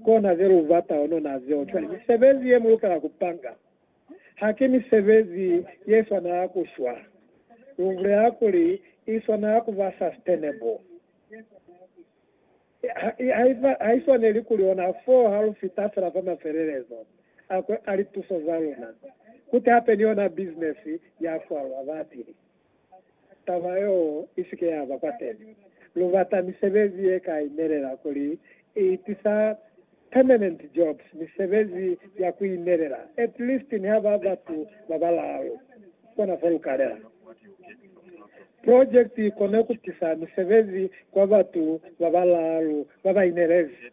Kona zelubata onona zeo cwale. Misebezi ye mulukela kupanga haki misebezi yeswanela kushwa. Lubulela kuli iswanela kuba sustainable. Haiswaneli kuli ona foo halufita fela fa mafelelezo a lituso zaluna, kuti hape ni yona business yashwa, Lwaba atile. taba yeo i si ke ya ba kwateni. Lu bata misebezi ye ka inelela kuli i tisa permanent jobs, misebezi ya ku inelela, at least niha ba batu ba balaalu. Kona fa lu ka lela. Project i kone ku tisa misebezi kwa batu ba balaalu ba ba inelezi.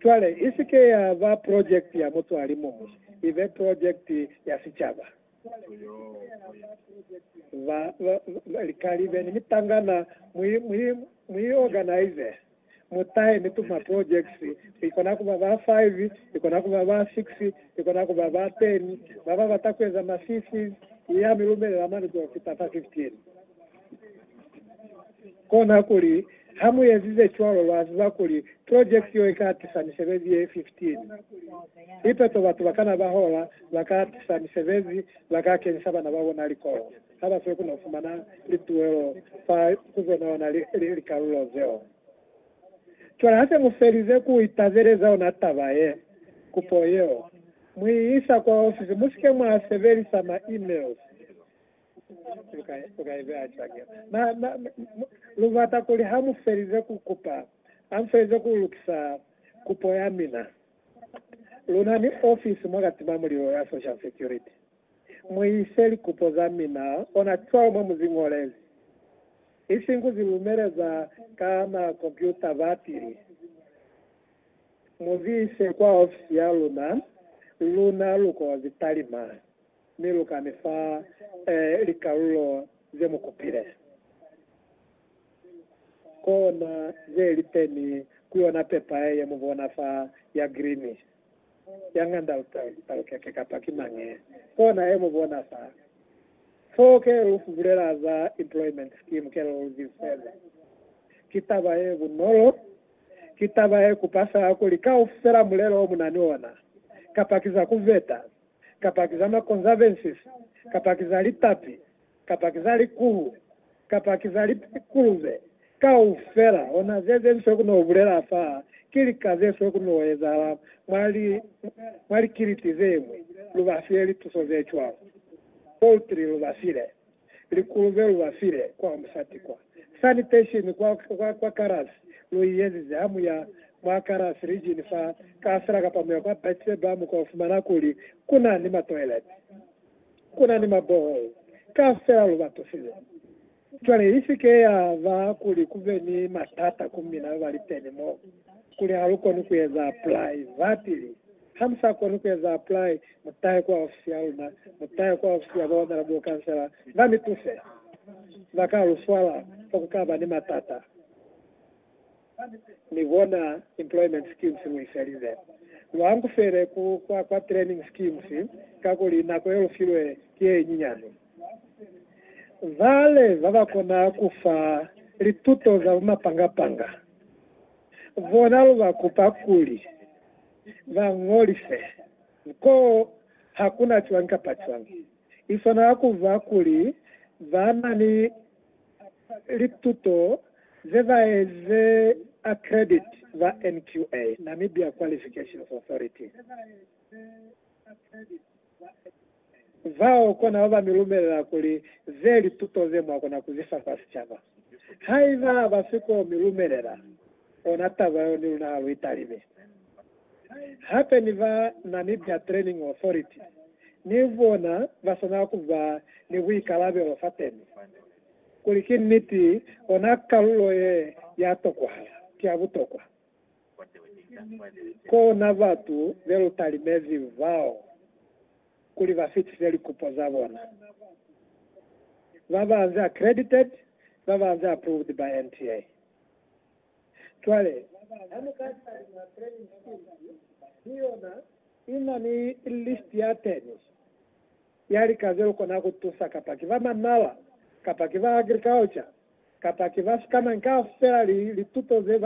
Cwale, i si ke ya ba project ya mutu a li muñwi, i be project ya sicaba. Ba, ba, ba, likali beni mitangana, mu i, mu i, mu i organize, mu tahe, mi tuma projects, i kona ku ba ba five, i kona ku ba ba six, i kona ku ba ba ten, ba ba bata ku eza ma CCs, i ya mi lumelela mani ku yo fita fa fifteen. Kona kuli, ha mu ezize cwalo, lwa ziba kuli project yo i ka tisa misebezi ye 15. Ipe to batu ba kana ba hola, ba ka tisa misebezi, ba ka kenisa bana ba bona likolo, ha ba siyo ku no fumana lituelo fa ku zo naona likalulo zeo. Cwale ha se mu felize ku itazeleza ona taba ye, kupo yeo, mu i isa kwa ofisi. Mu si ke mwa sebelisa ma emails. Lu bata kuli ha mu felize ku kupa, ha mu felize ku lukisa kupo ya mina. Lu na ni ofisi mwa ka tima mulilo ya Social Security. Mu ise likupo za mina ona cwalo mwa mu zi ñolezi, isiñi ku zi lumeleza ka ma kompyuta bapili. Mu zi ise kwa ofisi ya luna, luna lu ko zi talima. Mi lu ka mi fa likalulo ze mu kupile kona ze li teni ku yona pepa ye mu bona fa ya grini ya ng'anda. Lu talukeke kapa ki mañi kona ye mu bona fa fo ke lu bulela za employment scheme ke lu zibiseze. Ki taba ye bunolo, ki taba ye kupa fela kuli kaufela mulelo o mu na ni ona kapa ki za ku veta. kapa ki za ma conservances, kapa ki za lipapi, kapa ki za likuhu, kapa ki za likuluve, kaufela hona ze ze swe ku no bulela fa, ki lika ze swe ku no ezahala mwa li, mwa likiliti ze ñwi, lu ba file lituso ze cwalo. Poultry lu ba file. Likuluve lu ba file kwa musati kwa sanitation kwa, kwa, kwa kalasi. Lu i ezize ha mu ya mwa kalasi region fa kaasela kapa mu ya kwa Bathsheba, mu ka fumana kuli ku na ni matoilet, ku na ni maborehole, kaasela lu ba tusile. Cwale i si ke ya ba kuli ku be ni matata ku mina ba li teni mo, kuli ha lu koni ku eza private li. Ha mu sa koni ku eza apply, mu tahe kwa ofisi ya luna, mu tahe kwa ofisi ya baomela bukansela ba mi tuse. Ba ka lu swala fa ku ka ba ni matata ni bona employment schemes lu ifelize. Lu angufele ku kwa kwa training schemes kakuli nako ye lu filwe ki ye nyinyani. Vale ba ba kona ku fa lituto za bumapanga-panga bona lu ba kupa kuli. ba ñolise ko ha ku na cwañi kapa cwañi. I swanela ku ba kuli ba na ni lituto ze ba eze accredit ba NQA, Namibia Qualifications Authority. Zao kona ba mi lumelela kuli ze lituto ze mwa kona ku zifa kwa sicaba. Haiba ba si ko mi lumelela, ona taba yo ni luna ha lu italime. Hape ni ba Namibia Training Authority ni bona ba swanela ku ba ni buikalabelo fateni kuli ki niti ona kalulo ye ya tokuhala, ki ya butokwa. Kona batu be lu talimezi bao kuli ba fitise likupo za bona, ba banze accredited, ba banze approved by NTA. Cwale, ha mu ka talima training skills, ki yona i na ni list ya 10 ya lika ze lu kona ku tusa, kapa ki ba manala, kapa ki ba agriculture, kapa ki ba scanning, kaufela li lituto ze ba